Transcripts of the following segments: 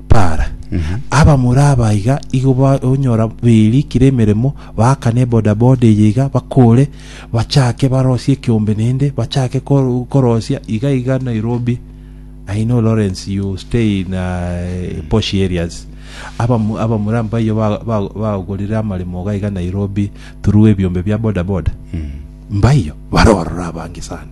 Para. Abamura aba iga igo ba- onyora beirikire emeremo, baakane ebodaboda eye iga, bakore, bachake barosie ekeombe naende, bachake kor- korosia iga iga Nairobi. I know Lawrence, you stay in uh, posh areas. Abamu- abamura mbaiyo ba- ba- bagorire amaremo iga iga Nairobi through ebiombe bia bodaboda. Mbaiyo, barorora abange sana.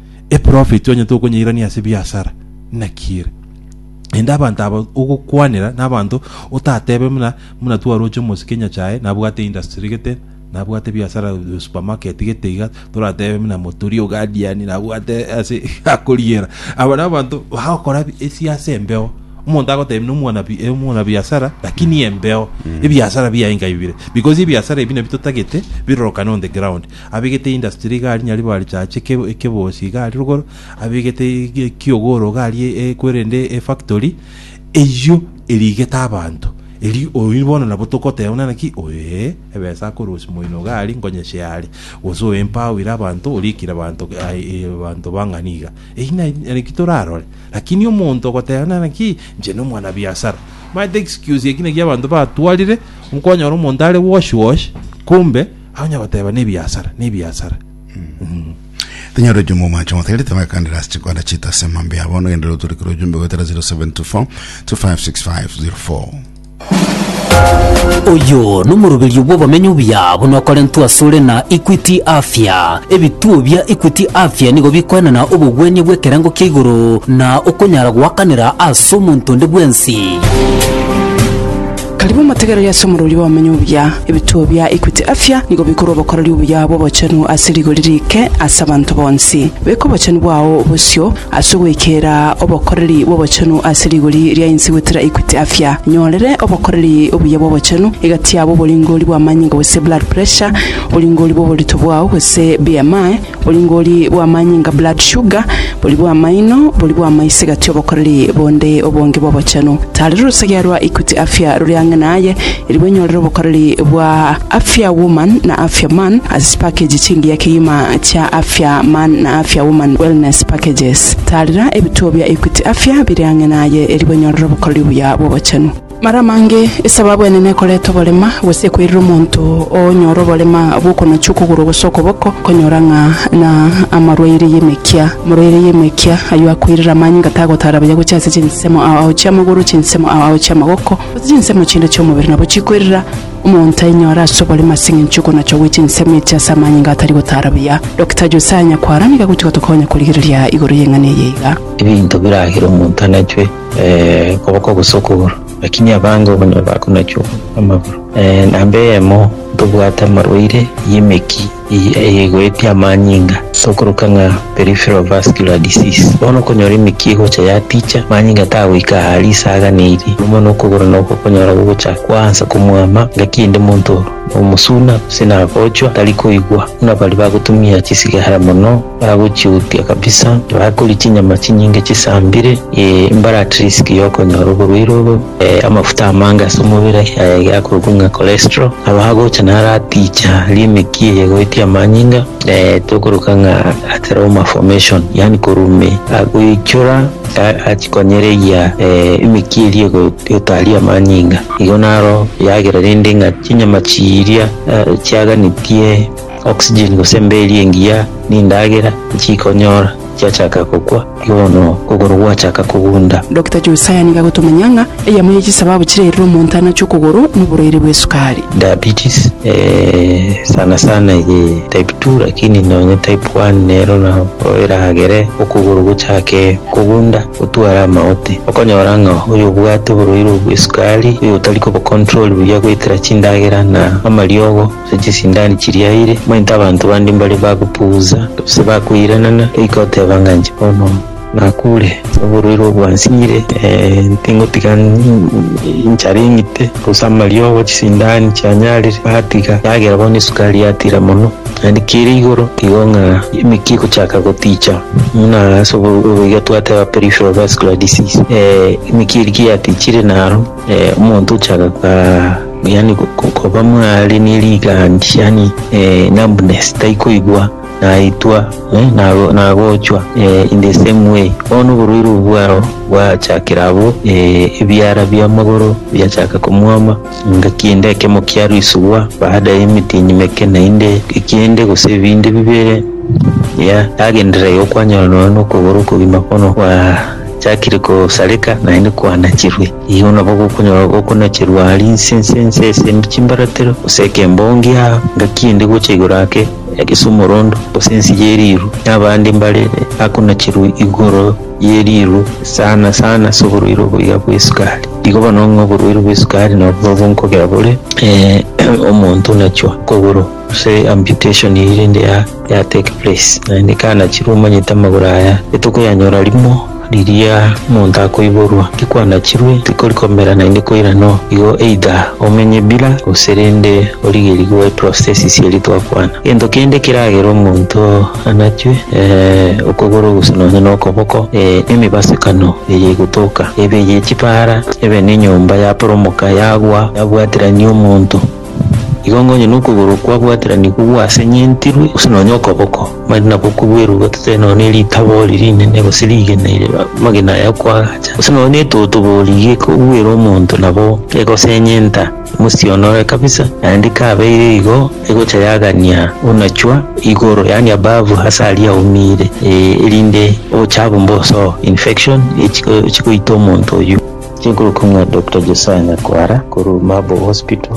Eprofeti onye tokonyairania ase biasara, naki ere? Naende abanto aba ogokwanera nabanto otatebe muna muna twaroche omosike nyachae nabwate industry gete nabwate biasara supermarket gete iga toratebe muna motori ogadiani nabwate ase akoriera aba nabanto bagokora esiasa embeo omonto agotebia na omwana bi- eh, omwana biasara lakini embeo ebiasara biaye nkaibire because ebiasara ebi nabitotagete birorokane on the ground Abegete industry iga aria nyaribo arichache eke- ekebosi iga aria rogoro, abegete ege- ekiogoro iga aria e- kwerende efactory, eyio erigete abanto. Eri oyio bono nabo togoteba buna naki, oyo ee, ebesa akorusia moino iga aria nkonyeshe are, gose oyo empowire abanto, orikire abanto ai- e- abanto bang'ani iga. Eyio na- naki torarore, lakini omonto ogoteba buna naki, inche nomwana biasara. Omanyete excuse eki naki abanto batwarire, okonyora omonto are wash wash, kumbe. Onye goteba nebiasara, nebiasara. Tonyora ojumbe omwache omotegerete bagakandera ase chikwanda chiaito ase amambe ya bono gendera otorekere ojumbe goetera 0724 256504 Oyo nomoroberio bw'obomenyo obuya buna okorentwe asore na Equity Afya. Ebituo bia Equity Afya nigo bikoenana obogwenia bw'ekerengo kia igoro na okonyara goakanera ase omonto onde bwensi. Karibu motegereri ase omorwori bw'abamenya obuya. Ebituo bia Equity Afya nigo bikorwa obokoreri obuya bw'obochenu ase rigori riike ase abanto bonsi. Beka obochenu bwao bosio ase ogoikera obokoreri bw'obochenu ase rigori ria inse goetera Equity Afya. Nyorere obokoreri obuya bw'obochenu egati yabo oboringori bw'amanyinga gose blood pressure, oboringori bw'oborito bwao gose BMI, Boringori bw'amanyinga, blood sugar, bori bw'amaino, bori bw'amaise gati obokoreri bonde obonge bw'obochenu. Tari rorosegea rwa Equity Afya rore ang'e naye, eri bwenyorere obokoreri bwa Afya Woman na Afya Man ase chipakeji chingiya kegima chia Afya Man na Afya Woman Wellness Packages. Taarera ebituo bia Equity Afya bire ang'e naye eri bwenyorere obokoreri obuya bw'obochenu. Mara mange esababu enene ekoreta oborema, gose ekoirera omonto onyore oborema bw'okonacha okogoro gose okoboko, konyora ng'a na amarwaire y'emekia. Omorwaire y'emekia ayio akoirera amanyinga tagotaara buya gochia ase chinsemo ao chi'amagoro, chinsemo ao chi'amagoko, gose chinsemo chinde chi'omobere, nabo chikoirera omonto ainyore ase oborema ase engencho y'okonachwa gwe chinsemo echi ase amanyinga atari gotaara buya. Dokita Josiah Nyakwara nigo agochi gotokonya korigereria igoro y'eng'ana eye iga. Ebinto biragera omonto anachwe. okoboko gose okogoro, lakini abange obonye bakonachwa amagoro. Namba eyemo, ntobwate amarwaire y'emeki eye egoetie amanyinga, tokoroka ng'a peripheral vascular disease. Bono okonyora emeki egocha yaticha, amanyinga tagoika ahari ase aganeirie, mono mono okogoro noko okonyora gogocha kwaansa komwama, ngaki ende monto nomosuna gose nagochwa tari koigwa, buna baria bagotumia chisigara mono. Bagochiutia kabisa, bakoria chinyama chinyinge chisambire, ee, mbare at risk y'okonyora oborwaire obo, ee, amafuta amange ase omobere, ee, giakorokwa ng'a cholesterol, nabo agocha naro aticha limit eye goetia amanyinga, ee, tokoroka ng'a atheroma formation, yaani korwa ime agoichora a- achikonyereria ee, emeki eria ego- egotaria amanyinga. Igo naro yagera rende ng'a chinyama chiria ee, chiaganetie Oxygen gose mbeeri engiya nindagera echikonyora chiachaka gokwa bono okogoro gwachaka kogunda. Dokita Josiah nigo agotomanya ng'a eyemo ye chisababu chirairire omonto anache okogoro noborwaire bw'esukari. Diabetes sana sana eye type two lakini nonye type one nero nao eragere okogoro gochake kogunda otware amagote. Okonyora ng'a oyobwate oborwaire obw'esukari oyotari kobocontrol buya goetera chindagera na amariogo. ase chisindani chiriaire, omanyete abanto bande mbare bagopugusa, gose bakoiranana, goika oteba ng'a inche bono nakure ase oborwaire obwo bwansinyire, tingotiga enchara eng'ite, gose amariogo, chisindani chianyarire, natiga, endagera bono esukari yatira mono, naende kere igoro igo ng'a emeki egochaka goticha, buna ase oboigo twateba peripheral vascular disease, emeki eria ki yatichire naro. Eh, omonto ochaka ka yani ko- ko- koba mware ne rigandi yani eh, numbness taikoigwa naitwa eh, nago- nagochwa eh, in the same way bono oborwaire obo bwao bwachakera abo eh, ebiara bi'amagoro biachaka komwoma nga kiende ekemo kiarusigwa baada y'emitinyi meke naende ekiende gose ebinde bibere ya yagenderera yokwanyorwa nonya nokogoro okogima bono kwa Chiakire kosareka, naende kwanachirwe. Igo nabo gokonyora gokonacherwa aria inse inse inse ase em- chimbaratero, gose ekembongi aa, ngaki ende gocha igoro ake ase omorondo, gose ense ye riiru, na abande mbare bakonacherwa igoro ye riiru sana sana ase oborwaire obo iga bwa esukari. Igo bono ng'a oborwaire bwa esukari nabwo bonkogera bore eh, omonto nachwa koboro. Gose amputation eyio rende ya ya take place naende kanachirwe omanyete amagoro aya etokoyanyora rimo riria omonto akoiborwa tikwanachirwe tikori komera naende koira no igo either omenye bila gose rende origerie goetwa stasis eria twakwana. Gento kende keragere omonto anachwe eh okogoro gose nonye na okoboko eh emibasekano eye egotoka ebe eye chipara ebe ne enyomba yaporomoka yagwa yabwaterania omonto. Igo onye nokogoro kwabwatiranigwe gwasenyentirwe, gose nonya okoboko, mari nabo kobwerugwa totebe nonya ne ritabo ri rinene gose rigena iri amagena aya kwagacha, gose nonya ne etoto borigie kobwera omonto nabo egosenyenta mosie one ore kabisa, naende kabeire igo egocha yagania onachwa igoro yaani above ase aria aumire, eh, erinde obochafu mbosoe, infection, echi echigoita omonto oyio. Chinkorokomia Doctor Josiah Nyakwara korwa Marble Hospital.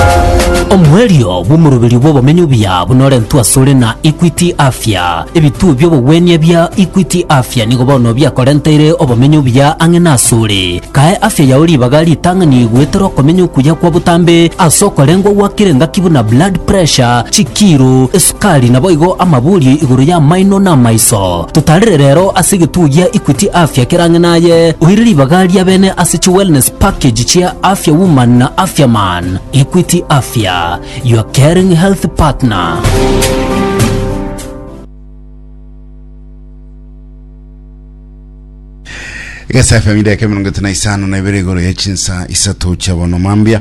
Omoerio bw'omoroberio bw'obomenyo obuya bunorentwe asore na Equity Afya. Ebituo bi'obogwenia bia Equity Afya nigo bono biakorenteire obomenyo obuya ang'e nasore. Kae afya yao ribaga ritang'ani goetera okomenya okuya kwa botambe ase okorengwa gwakire ngaki buna blood pressure, chikiro, esukari, Kari naboigo amabuurio igoro y'amaino na amaiso. Totarire rero ase egetugi gia Equity Afya kera ang'e naye, oire ribaga ria bene ase chi wellness package chia Afya Woman na Afya Man. Equity Afya, your caring health partner. egesafe ya midaka emerongo etano na isano na ibere igoro ya chinsa isato chia bono mambia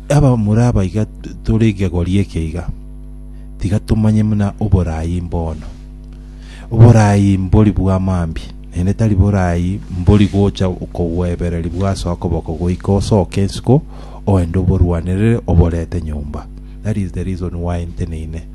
Abamura aba iga tore egegori eke iga, tiga tomanye muna oboraai mbono. Oboraai mbori bwa mambia, naende tari boraai mbori gocha kogwebereri bwase okoboko goika osoke isiko oende oborwanerere oborete nyomba. That is the reason why nteneine.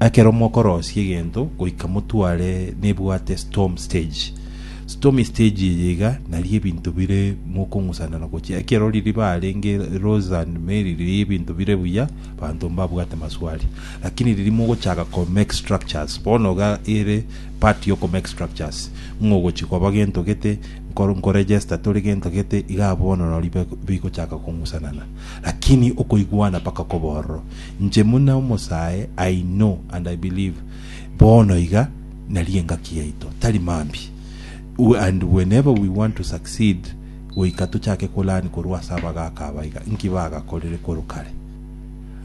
Ekero mokorosia egento goika motware nebwate storm stage. Stormy stage eye iga naria ebinto bire mokong'usana na gochia. Ekero ririba arenge Rose and Mary riria ebinto bire buya banto mbabwate maswali. Lakini riria mogochaka ko make structures bono iga ere part yo ko make structures ng'a ogochi koba gento gete nkor- nkoregister tore gento gete iga bono nari bek- bigochaka kong'usanana. Lakini okoigwana mpaka koba ororo. Inche buna omosae, I know and I believe, bono iga nari engaki yaito tari mambia, we and whenever we want to succeed goika tochake ko learn korwa ase abagaaka aba iga, nki bagakorire korwa kare?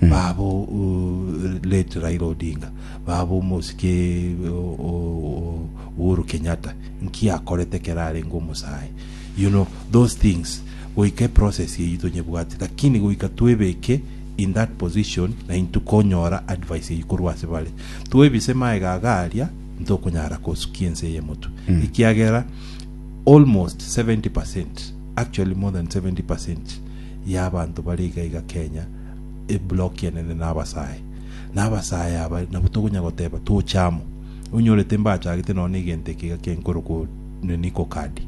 Baba o- o- late Raila Odinga, baba omosike o- o- o- Uhuru Kenyatta, nki akorete ekero arenge omosae? You know, those things, goika eprocess eyio tonyebwate, lakini goika twebeke in that position na intwe konyora advice eyio korwa ase bare. Twebise maega aga aria ntokonyara kosukia ense eye motwe ekiagera almost 70 percent actually more than 70 percent ya abanto bare iga iga Kenya e block enene na abasae na abasae aba nabo tokonya goteba toche amo onyore timbachagete nonya na egento eke iga kenkoro ko nini ko kadi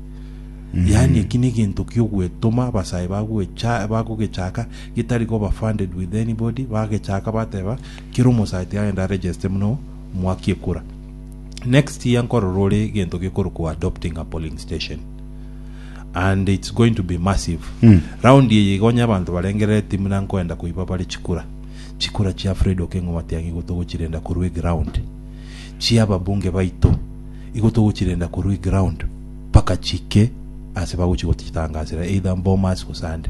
yani eki ni egento kiogwetoma abasae bagogecha bagogechaka getari koba funded with anybody, bagechaaka bateba kera omosaati agende a register buna omwaki ekura. Next year nkorora ore egento gekorokwa adopting a polling station and it's going to be massive. Round eye iga onye abanto barengerereti buna nkoenda koiba bare chikura, chikura chia Fred Okengo Matiang'i igo togochirenda korwa eground, chia ababunge baito igo togochirenda korwa eground mpaka chiike ase bagochi gochitangasera either Bomas gose ande.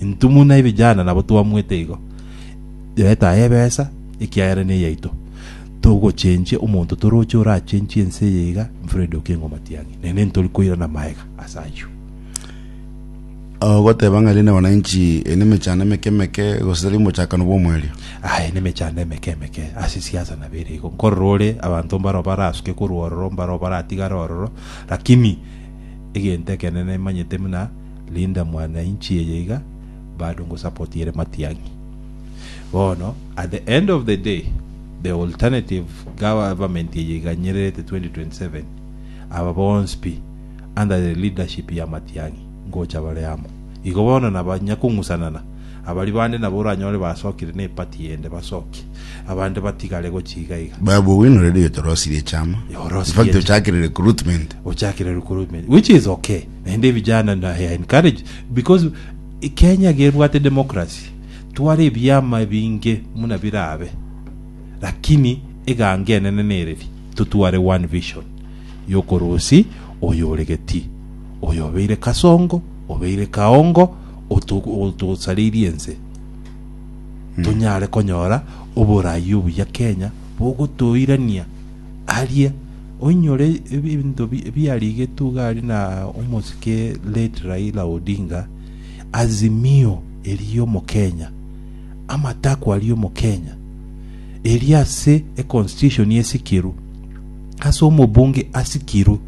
Intwe buna ebijana nabo twamwete igo, Yetae ebesa, ekiagera neyaito. Togochenchia omonto toroche orachenchie ense eye iga, Fred Okengo Matiang'i, naende ntori koirana maega ase ayio. Ogoteba ng'a rinde wananchi ere nemechando emeke emeke gose tari omochakano bw'omoerio. Aye nemechando emeke emeke ase siasa nabo ere igo. Nkorora ore abanto mbaro barasuke korwa ororo mbaro baratigare ororo, lakini egento ekenene emanyete buna Linda mwana inchi eye iga bado ngosupport ere matiang'i. Bono at the end of the day the alternative government eye iganyererete 2027 aba bonsi pi under the leadership ya matiang'i ngocha bare amo. Igo bono naba nyakong'usanana abari bande nabo oranyore basokire ne party ende basoki abande batigare gochi iga iga. Babu Owino already otorosirie chama. Orosirie In fact chama. ochakire recruitment. Ochakire recruitment which is okay. Naende vijana na I encourage because Kenya gebwate democracy tware ebiama ebinge muna birabe lakini eganga enene nereri totware one vision yokorusi oyo ore geti oyo obeire kasongo obeire kaongo otu- otusareirie ense tonyare konyora oborayi obuya Kenya bogotoirania Aria oinyore ebinto biarigetwe iga aria na omosike late Raila Odinga, Azimio eria omokenya, amatakwa aria omokenya, eria ase econstitution esikirwe, ase omobunge asikirwe,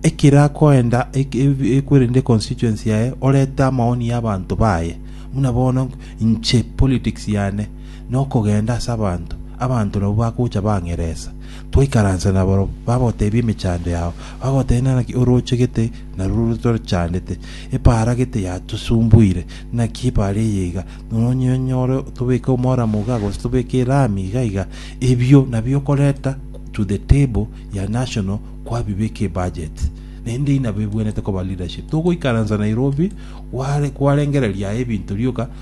ekero akoenda ekwerende constituency yaye orete amaoni y'abanto baye, buna bono inche politics yane nokogenda ase abanto, abanto nabwo bagocha bang'eresa. Twaikaransa nabarabwo, bagotebia emechando yao, bagotebia naki orochegete na ruru torochandete. Epaara gete yatosumbuire, naki epaara eye iga, nonya onyore tobeke omoramo iga, gose tobeke erami iga iga, ebio nabio okoreta to the table ya national kwabibeka ebudget. Naende inabebwenerete koba leadership. Togoikaransa Nairobi, kware kwarengereria aye ebinto rioka,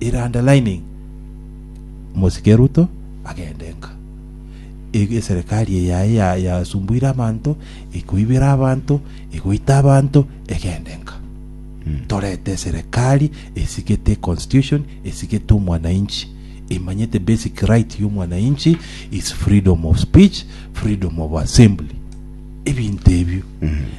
In underlining, Omosike Ruto agende nka. E- Eserekari eye yaye ya- yasumbuire abanto, ekoibera abanto, egoita abanto, egende nka. Torete eserekari esigete constitution, esigete omwananchi, emanyete basic right y'omwananchi is freedom of speech, freedom of assembly. ebinto ebio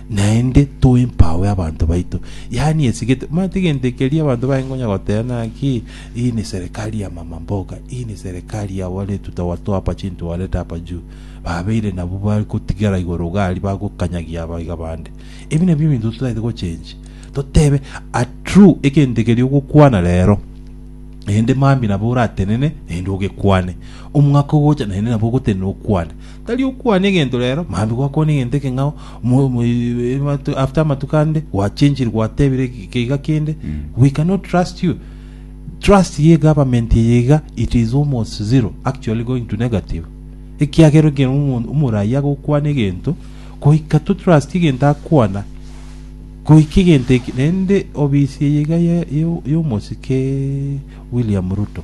naende toempawe abanto baito yaani esigete mani tegento ekeria abanto baye ngonya goteba naki hii ni serikali ya mama mboga hii ni serikali ya wale tutawatoa hapa chini tuwaleta hapa juu babeire nabo bari gotigara igoro gari bagokanyagia abaiga bande ebi nabio ebinto totagete gochenji totebe a true egento ekeria ogokwana rero naende mambi nabo oratenene naende ogekwane omwaka ogocha naende nabo ogotenena okwane Tari okwana egento rero, mambia gwakwana egento ekeng'ao, mo- mo- eh, amatu- after amatuko ande gwachenchire gwatebire ge- geiga kende, we cannot trust you. Trust ye government eye iga, it is almost zero, actually going to negative. Ekiagera ekero omo- omoraia agokwana egento, goika to trust egento akwana, goika egento eke, naende obisi eye iga ye- ye- y'omosike William Ruto.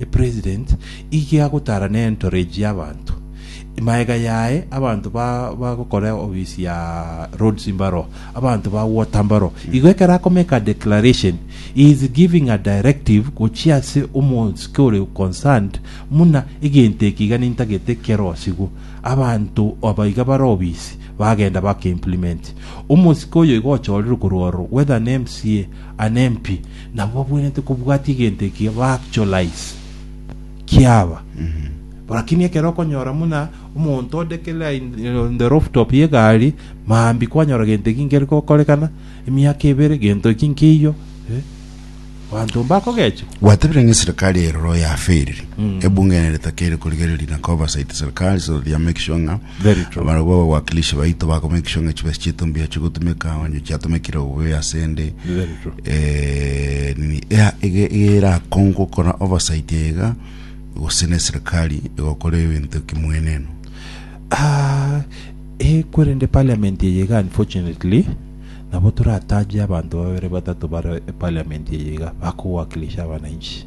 Epresident ige agotara ne entourage y'abanto, maega yaye abanto ba bagokora office ya roads mbaro, abanto ba water mbaro. Igo ekero akomeka a declaration, he is giving a directive gochia ase omosike ore concerned muna egento eke iga nintagete kerosigu. Abanto aba iga bare office bagenda baka implement. Omosike oyo igo ochorerwe korwa ororo whether ne MCA, Anempi, nabo babwenerete kobwatia egento ekiya ba actualize kiaba. Lakini ekero okonyora muna omonto ode kera in, on the rooftop ye gari, mambi kwanyora gento eki nkeri gokorekana, emiaka ebere gento eki nkeiyo, eh, banto mbakogecha. Gwatebire ng'a eserikari eye rora oyo afeiriri. Ebunge nere takeire korigereria na ka oversight serikari so that ya make sure ng'a Very true. Abarabwo ababwakilishi baito bakomenkishwa ng'a chibesa chiaito mbuya chigotumeka onye chiatumekire obuya ase ende Very true. eh, nini ea- ege- ege erakongwe gokora oversight ega gose na eserikali egokora ebinto kimweneno Ah, eh, kwerende parliament eye iga unfortunately nabo torataje abanto babere batato bare parliament eye iga bakowakilisha abananchi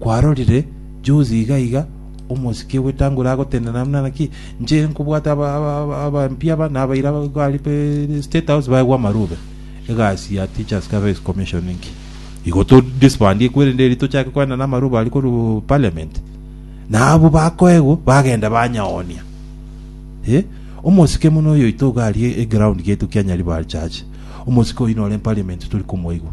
Kwarorire juzi iga iga omosike bw'etanguru agotenena buna naki? Inche nkobwata abampi aba nabaira gari pe state house baegwe amarube. Egasi ya teachers service commission inki? Igo to disbandie kwerende eri tochake koenda na amarube ari koru parliament. Na abo bakoegwa bagenda banyaonia. Eh? Omosike muno oyo oito iga ari eground getu kia Nyaribari church. Omosike oyo nore parliament tori komoigwa.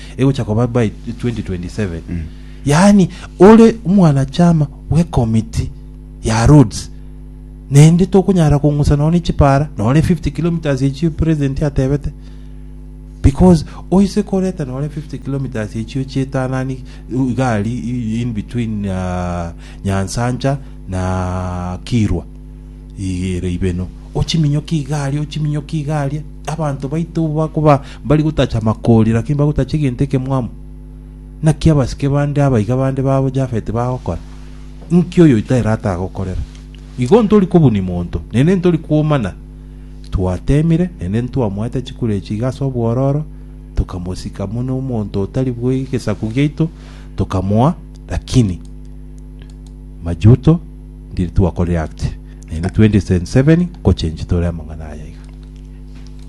egocha koba by 2027 yaani ore omwanachama bw'ekomiti ya roads naende tokonyara kong'usa nonya ne chipara nonya ne 50 kilometres echio president atebete because oise koreta nonya ne 50 kilometres echio chietanani igari in between uh, nyansancha na kirwa Igere ibeno. Ochiminyokie igari, ochiminyokie igari. Abanto baito bakoba bari gotacha makori, lakini bagotacha egento ekemwamo. Naki abasike bande abaiga bande babo Jafeti bagokora. Inki oyo oitaire atagokorera? Igo ntori kobuni monto, nende ntori kwomana. Twatemire, nende ntwamoete chikura echi iga ase obwororo, tokamosika muna omonto otari bwe gesaku giaito, tokamoa, lakini majuto Ndiri twa ko react naende 2077 ko change tore amang'ana aya iga.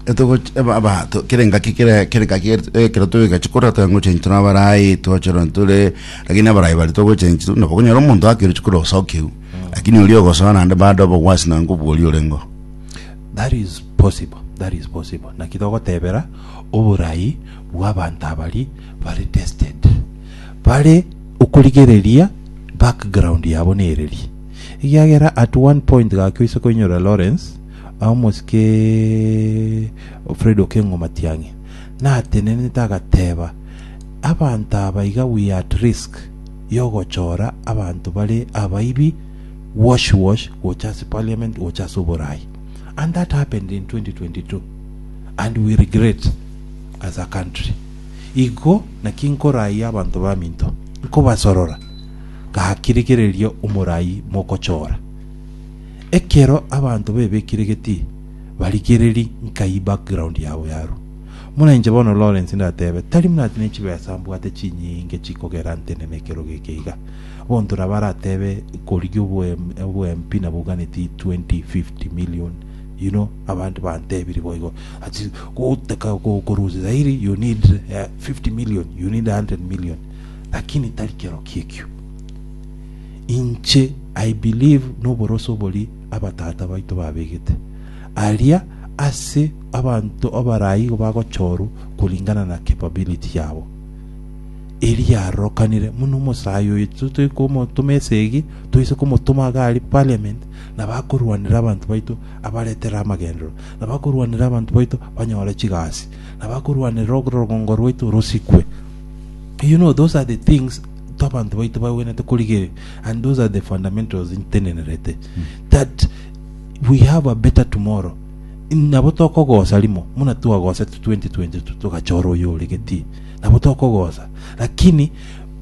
Etogo eba aba to kere ngaki kere kere ngaki kero to gachi kora to ngo change tuna barai to chero ntule lakini abarai bali to go change tu no kunyara omuntu akiri chukuru osokiu lakini uri ogosoa nande bado bo wasi na ngo bori orengo That is possible, that is possible. Naki togotebera oborai bwa abanto abari bare tested. Bare okorigereria background yabo nereria. Egiagera at one point gakio ise koinyora Lawrence omosike Fred Okengo Matiang'i natenenete agateba abanto aba iga we are at risk yogochora abanto bare abaibi wash wash gocha ase parliament gocha ase oborayi and that happened in 2022 and we regret as a country. Igo naki nkorayia abanto baminto, nkobasorora gaki rigereria omorai mogochora. Ekero abanto bebekire geti barigereri nkai background yabo yarwa. Muna inche bono Lawrence ndatebe, tari buna ati nechibesa mbwate chinyinge chikogera ntenene ekero geke iga. Bonto nabo aratebe korigia obo MP nabo oganeti 20, 50 million, Inwe abanto bantebirie boigo, ase gotaka korusia Zaire you need eh, 50 million, you need 100 million, lakini tari kero kiekio. Inche I believe noboroso obori abatata baito babegete aria ase abanto abarai igo bagochorwa kuringana na capability yabo eria arorokanire muna omosayi oyo totoe komotoma esegi toise komotoma iga ari parliament nabakorwanera abanto baito abaretere amagenderero, nabakorwanera abanto baito banyore chigasi, nabakorwanera orogongo rwaito rosikwe. You know, those are the things to abanto baito bagwenerete korigereria, and those are the fundamentals ntenenerete that we have a better tomorrow. Nabo tokogosa rimo, muna twagosete 2022 togachora oyo oregetie, nabo tokogosa, lakini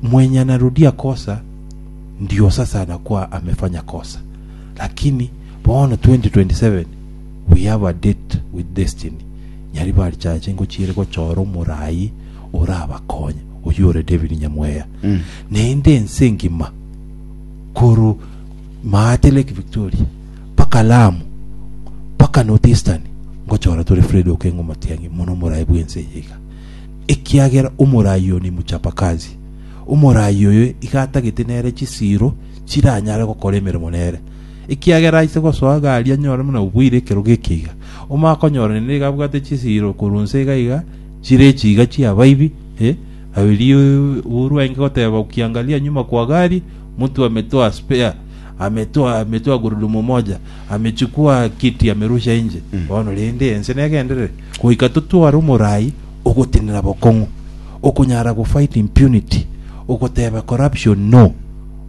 mwenye anarudia kosa Ndiosa sana kwa amefanya kosa lakini bono 2027 we have a date with destiny nyari barichache ngochiire gochora omoraai orabakonye oyio ore David Nyamweya naende ense engima koru Maate Lake Victoria mpaka Lamu mpaka North Eastern ngochora tore Fred Okengo Matiang'i mono omoraai bwense eye iga ekiagera omoraai oyo ni muchapa kazi Omoraai oyo iga atagete nere chisiiro chiranyare gokora emeremo nere, ekiagera aise gosoa iga aria anyore buna oboire ekerogo eke iga. Omokonyora nende iga abwate chisiiro korwa inse iga iga, chire echiiga chi'abaibi, eh, erio buru aenge goteba, Ukiangalia nyuma kwa gari, mtu ametoa spare, ametoa, ametoa gurudumu moja, amechukua kiti amerusha nje. Bono rende ense negenderere, goika totware omoraai ogotenena bokong'u, okonyara go fight impunity, ogoteba corruption no,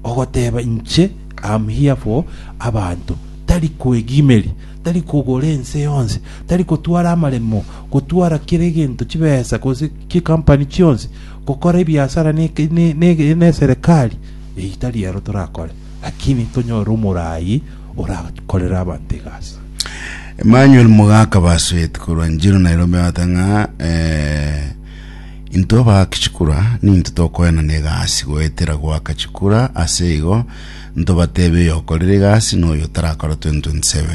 ogoteba inche am here for abanto, tari koegimeria, tari kogora ense yonsi, tari kotwara amaremo, gotwara kera egento chibesa gose chi company chionsi, gokora ebiasara ne, ne, ne, ne serikali, eyi tari ero torakore, lakini tonyore omorayi orakorere abanto egasi. Emmanuel Mugaka Basweti korwa Njiru Nairobi abate ng'a eh, intwe abaaki chikura ninto tokoenana egasi goetera goaka chikura ase igo ntobateebe oyokorire egasi na oyo tarakora 2027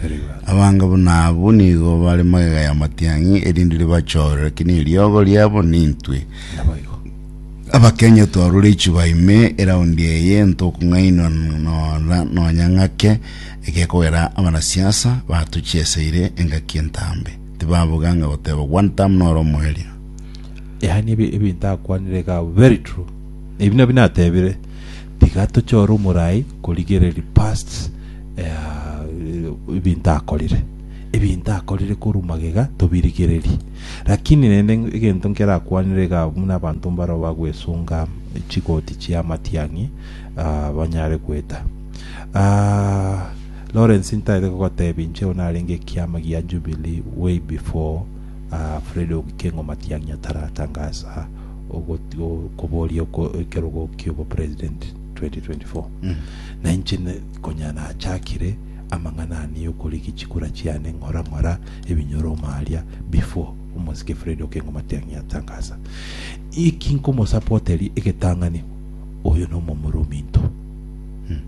Very well. abange buna abwo nigo bare magega ya matiang'i erinde ribachoorere ki neriogo riabo nintwe Naboigo. Abakenyetwe abarorechi baime eraundi eye ntokong'ainwa nonya nonya ng'ake egekogera abanasiasa batuchieseire engaki entambe tibaboga ng'a goteba one term noro omoerio. Yaani ebi ebinto akwanire iga abwo very true. Ebi nabio natebire tiga tochore omorai korigereria past ebinto akorire. Ebinto akorire korwa magega tobirigererie. Lakini rende egento nkerakwanere iga abwo buna abanto mbaro bagwesunga chigoti chi'amatiang'i ah, banyare gweta. Ah, Lawrence ntarete kogotebia inche igo narenge ekiama gia Jubilee way before ah, Fred Ogikeng'o Matiang'i ataratangasa ogot- o- koboria oko- ekerogo ki'obo president 2024 na inche ne- konya nachakire amang'ana ane y'okorigia chikura chiane ng'ora ng'ora ebinyoro omo aria before omosike Fred Okeng'uma Tiang'i atangasa eki nkomosapoteri egetang'ani oyo nomomura ominto hmm.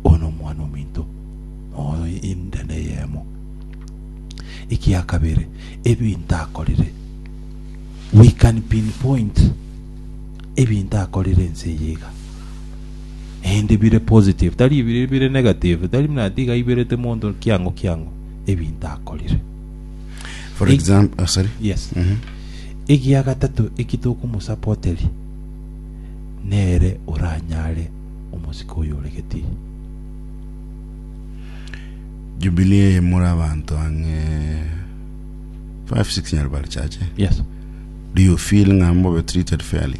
oyo nomwana ominto oyo inde neyemo ekia kabere ebinto akorire we can pinpoint ebinto akorire ense yiga ende bire positive tari bire bire negative tari muna tiga iberete monto kiango kiango ebinto akorire. For Eg- example, oh, sorry. Yes. Mhm. Egia gatato eki tokomosapoteri nere oranyare omosike oyo ore Geti. Jubilee eye more abanto ang'e 5 6 nyarubari chache. Yes. Do you feel ng'a mbobe treated fairly?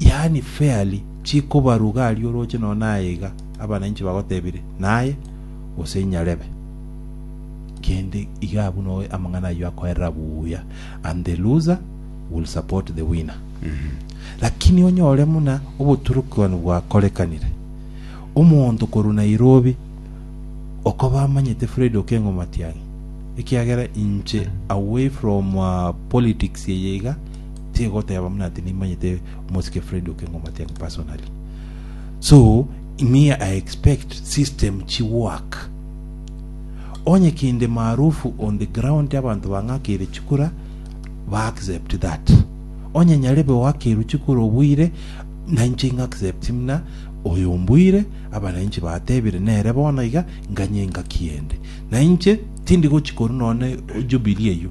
yaani fairly, chikobaruga aria oroche nonya naye iga abananchi bagotebire naye, gose inyarebe kende iga abwo no amang'ana ayio akoerera buya and the loser will support the winner lakini onyore muna oboturukiwani bwakorekanire omonto korwa Nairobi okoba amanyete Fred Okengo Matiang'i ekiagera inche away from uh, politics eye iga Tiga goteba buna ati nimanyete omosike Fred Okengo Matiang'i personally. So, me I expect system chi work. Onye kinde maarufu on the ground abanto bang'akeire chikura, ba accept that. Onye nyarebe oakerwe chikura obuire, nainche ing'accept muna oyo ombuire, abananchi batebire nere bono iga, nganye ingaki ende. Nainche tindi gochi korwa nonye jubilee eyio.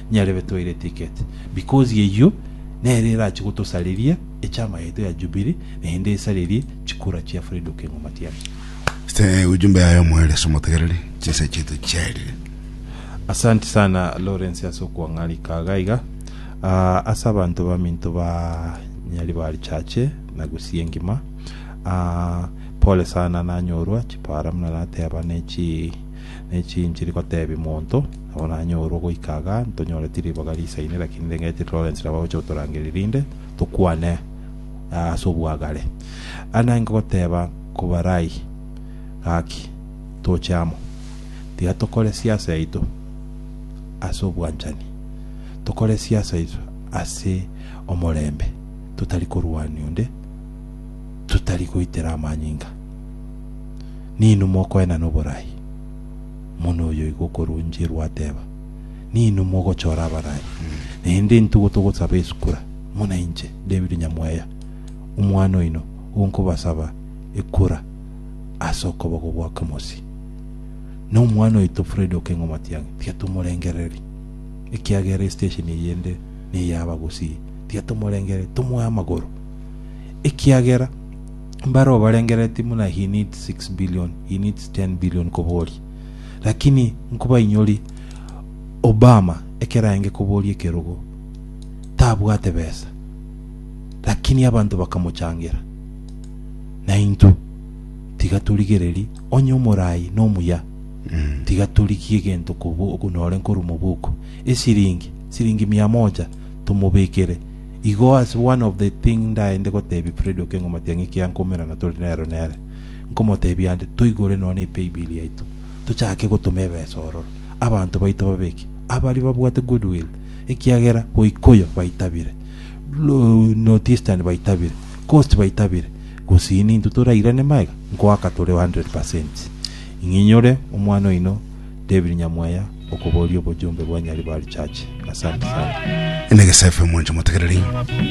Nyarebe toire ticket because eyio nere erache gotosareria echama yaito ya Jubilee naende esarerie chikura chia Fred Okengo Matiang'i. Ste ujumbe yaye omoerio ase omotegereri, chinsa chiaito chiarire. Asanti sana Lawrence ase okwang'arika iga iga ah, ase abanto baminto ba Nyaribari Church na Gusii engima ah, pole sana nanyorwa chipara buna nateba ne chi Ne chinchiri gotebia monto nabo nanyorwe goika igaa ntonyore ti riboga risaine lakini ndengeti Lawrence nabo agocha gotorangeria rinde tokwane aa ase obwagare aa naye ngogoteba kobarai gaki toche amo tiga tokore siasa yaito ase obwanchani tokore siasa yaito ase omorembe totari korwania onde totari goitera amanyinga. Ninwe mokoenana oboraai, omonu oyoigo okoroncherwa ateba, Ninwe mogochora abaraai, naende intwe igo togosaba esukura, buna inche, David nyamweya, omwana oino, igo nkobasaba ekura ase okoboko gwa Kemosi. Na omwana oito Fred Okeng'o Matiang'i tiga tomorengereri, ekiagera estation eye ende ney'abagusii, tiga tomorengereri, tomoe amagoro, ekiagera Mbareo barengereretie buna units six billion, units ten billion koboria. Lakini nkobainyori Obama ekero aenge koboria ekerogo tabwate besa. Lakini abanto bakamochangera. Na intwe tiga torigereri onye omorai na omuya. Tiga torigie egento kobu- nore nkorwa mobuko. Esiringi, siringi mia moja tomobekere. Igo ase one of the thing ndaende gotebia Freddy Okeng'o omatiang'i ekiagera nkoumerana tore nero nere, nkomotebia ande, toigore nonya ne paybill yaito, tochake gotoma ebesa ororo, abanto baito babeke, abaria babwate goodwill, ekiagera Goikuyu baitabire, North Eastern baitabire, Coast baitabire, gosini intwe torairane magega, nkoaka tore 100%. Ing'inyore omwana oino David Nyamweya, okoboria obojumbe bwa Nyaribari Church. Asante sana. Negesae FM mwanche motegereri.